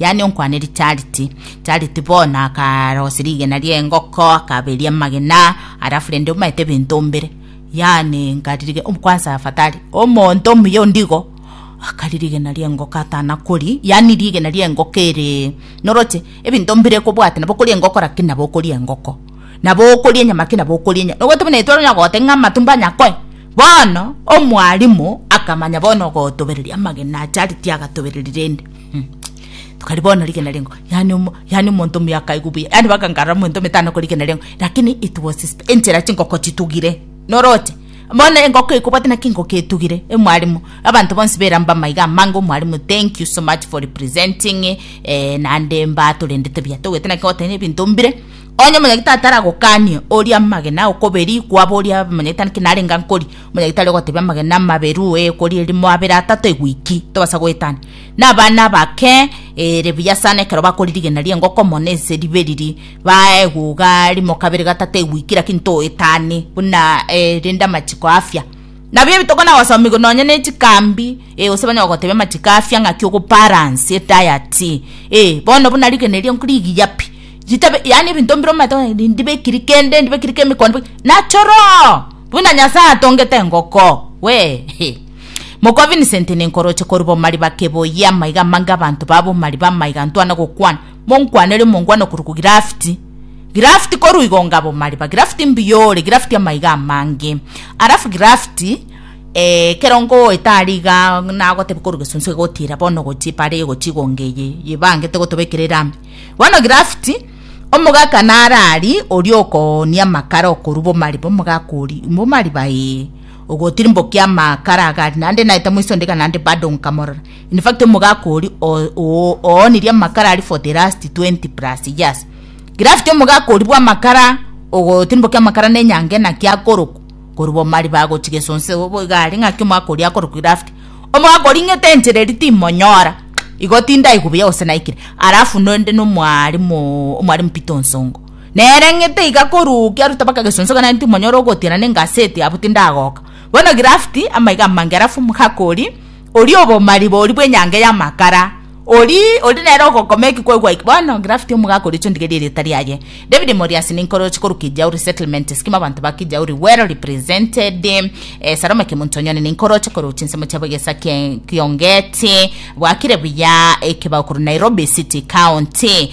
yaani onkwanerie charity. Charity bono akarosia rigena ri'engoko akaberia amagena alafu rende omaete ebinto ombere yaani nkaririge kwansa afatari omonto omuya ondigo akari rigena ri'engoko atanakori yaani rigena ri'engoko ere noroche ebinto mbire kobwate nabo okoria engoko lakini nabo okoria engoko nabo okoria enyama lakini nabo okoria enyama nobwate buna intwe onya goteba ng'a amatumbo anyakoe bono omwalimu akamanya bono ogotobereria amagena charity agatobereria rende. Tokari bono rigena rengo yani omo yani omonto omuya akaigwa buya yani baka nkarora omonto ometano ko rigena rengo lakini it was his enchera chingoko chitugire noroche bono engoko ekobwate naki engoko etugire emwarimu abanto bonsi bera mbama iga amange omwarimu thank you so much for representing eh, nande mbatorendete buya togwete naki goteba na ebinto mbire onye omonyagitari taragokanie oria amagena okoberi kwaba oria omonyagitari naki narenga nkori omonyagitari ogotebia amagena amaberu eh kori erimo abere atato egwiki tobasa goetania na abana bake ere buya sana ekero bakoririgeneria engoko mono ase ribe riria bae eguga rimo kabere gatato egwiki lakini toetani buna erinde amachiko afya nabio ebitokona na gosomigwa nonya ne chikambi e gose banyara gotebia amachiko afya ng'aki ogo balance edayati e bono buna rigeneria rigiya pi ritabe yaani ebinto mbire omanyete onye rindi ndibekiri kende ndibekiri kemikon nachoroo buna nyasae atongete engoko wee. Mokwa Vincent ninkoroche korwa bomariba keboyia amaiga amange abanto ba bomariba amaiga ntwana gokwana monkwane ere omongwana okorokwa Girafiti Girafiti korwa igo nga bomariba Girafiti mbuya ore Girafiti amaiga amange alafu Girafiti eh, kero ngoeta aria iga nagotebia korwa gesunsu egotira bono gochia epara eye gochia igo ngeye yebangete gotobekera erami bono Girafiti omogaka nare aria oria okonia amakara okorwa bomariba omogaka oria bomariba ee. Ogotirimbokia amakara agari naende naete moiso ndiga naende bado nkamorora. In fact omogaka oria oonirie amakara aria for the last 20 plus years. Gravity omogaka oria bw'amakara ogotirimbokia amakara na enyango enaki akorokwa korwa bomariba agochia gesonse obo iga aria ng'aki omogaka oria akorokwa Gravity. Omogaka oria ing'ete enchera eria timonyora igo tindaigwa buya gose naikire. Alafu naende na omwarimu Peter Onsongo. Nere ng'ete iga koruukia rutaba kagesonsoka naintu monyore ogotiana ne engaseti abwo tindagoka. Bono Girafti, amaiga amange alafu Mhakori, oria obomari bori bw'enyange y'amakara, ori ori nere ogokoma eki kwaigwa eki. Bono Girafti omogaka oria chondigerie erieta riaye. David Moriasi ninkoroche korwa Kijauri Settlement Scheme abanto ba Kijauri well represented. Eh, Salome Kimuntonyoni ninkoroche korwa chinsemo chiabo egesa kie Kiongeti. Bwakire buya ekebao korwa Nairobi City County.